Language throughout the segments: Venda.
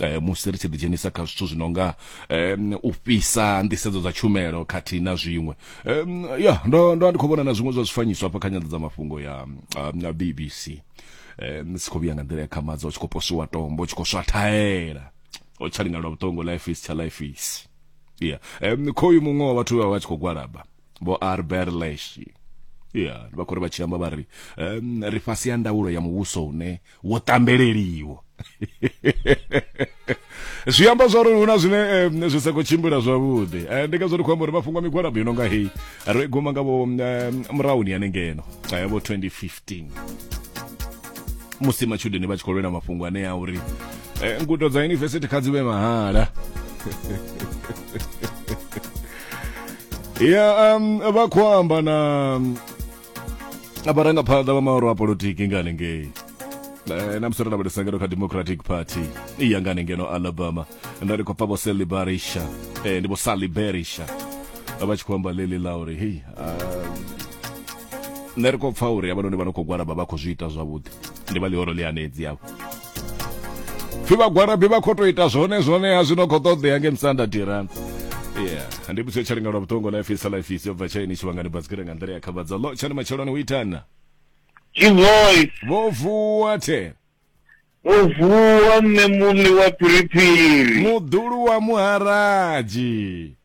eh, musi ri tshi ḓidzhenisa kha zwithu zwi no nga um, u fhisa nḓisedzo dza tshumelo khathihi na zwiṅwe um, ya ndo ndo ndi khou vhona na zwiṅwe zwa zwifanyiso hafha kha nyanḓadzamafhungo ya um, bbc um, si khou vhuya nga nḓila ya khamadza u tshi khou posiwa tombo u tshi khou swathaela o tsha linga lwa vhuṱongo life is tsha life is ya yeah. um, khoyu muṅwe wa vhathu vha vha tshi khou gwalaba vho arberesh ya yeah. vha khou ri vha tshi amba vha ri um, ri fhasi ya ndaulo ya muvhuso une wo tambeleliwa zwi amba zwa uri hu na zwine eh, zwi sa khou tshimbila zwavhuḓi eh, ndi ngazwo ndi khou amba uri mafhungo a migwalabo yo no nga heyi ro i guma nga vho eh, murahuni yane ngeno eh, vho 2015 musi matshudeni vha tshi khou lwela mafhungo ane a uri eh, ngudo dza yunivesithi kha dzi vhe mahala ya um, vha khou amba na a vharangaphanḓa vha maoro a politiki nga hanengei Eh, na musoro na vhalisangano kha democratic party i ya nga hanengeno alabama nda ri khou pfa vho sally barisha eh, ndi vho sally berisha vha tshi khou amba leli la uri hei ah, nṋe ri khou pfa uri havhanoni vha no khou gwalaba vha khou zwi ita zwavhuḓi ndi vha ḽihoro ḽi hanedzi avho pfi vhagwarabi vha khou tou ita zwone zwone ha zwino khou ṱoḓea nge musanda dirani yeah ndi muthu tsha linga lwa vhuṱongo na fisa la fisa bva tshaini tshivhangani basikira nga nḓila ya khavhadzo lo tshani matsheloni u itana Jivoice vho vuwa the vho vuwa mme muḽi wa phiriphiri muḓulu wa muharaji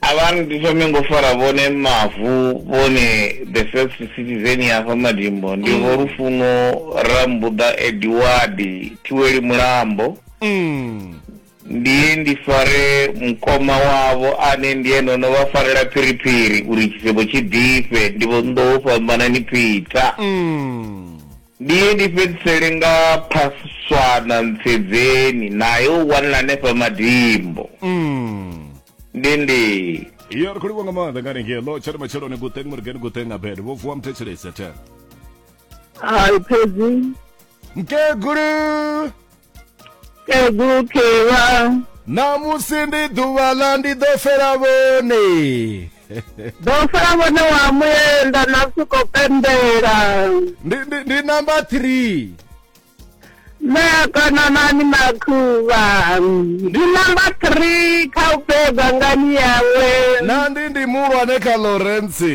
A vha ri ndi thome ngo fara vhone mavu vhone the first citizen ya hafha Madimbo ndi vho Lufuno Rambuḓa Edward Thiweli Mulambo. Ndiye ndi fare mukoma wavho ane ndi ene o no vha farela phiriphiri uri tshisevho tshi ḓifhe ndi vho Nḓou Fhambanani Peter. Ndi ye ndi fhedzisele nga Phaswana Ntsedzeni, nae u wanala hanefha Madimbo ndendeni. Yo ri khou livhuwa nga maanḓa nga hanengei ḽo tsha ri matsheloni guṱeng murigeni guṱeng abed vho vuwa muthetshelesi a the Hai phedzi. mkegulu kegukhiwa ṋamusi ndi ḓuvha ḽa ndi ḓo fela vhone ḓo fela vhone wa muyenda na siko pembela ndi, ndi, ndi number three meakananani makhuvha ndi number three kha u beba ngani yawe na ndi ndi muhulwane kha lawrence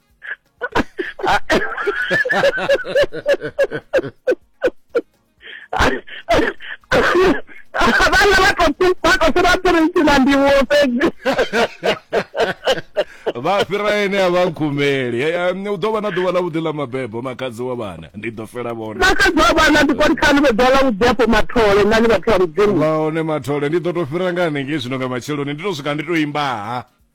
vhala vha khou vha khou fhira phirisi na ndivhuwo fhedzi vha fhira ene a vha nkhumeli Eh, eh, u ḓo vha na ḓuvha ḽa vhuḓi ḽa mabebo makhadzi wa vhana ndi ḓo fela vhone nakadzi wa vhana ndi koni khani vhe ḓola vhuḓi afho mathole nani vhathu vha mudzimu vha hone mathole ndi ḓo to fhira nga hanengei zwino nga matsheloni ndi to swika ndi to imbaha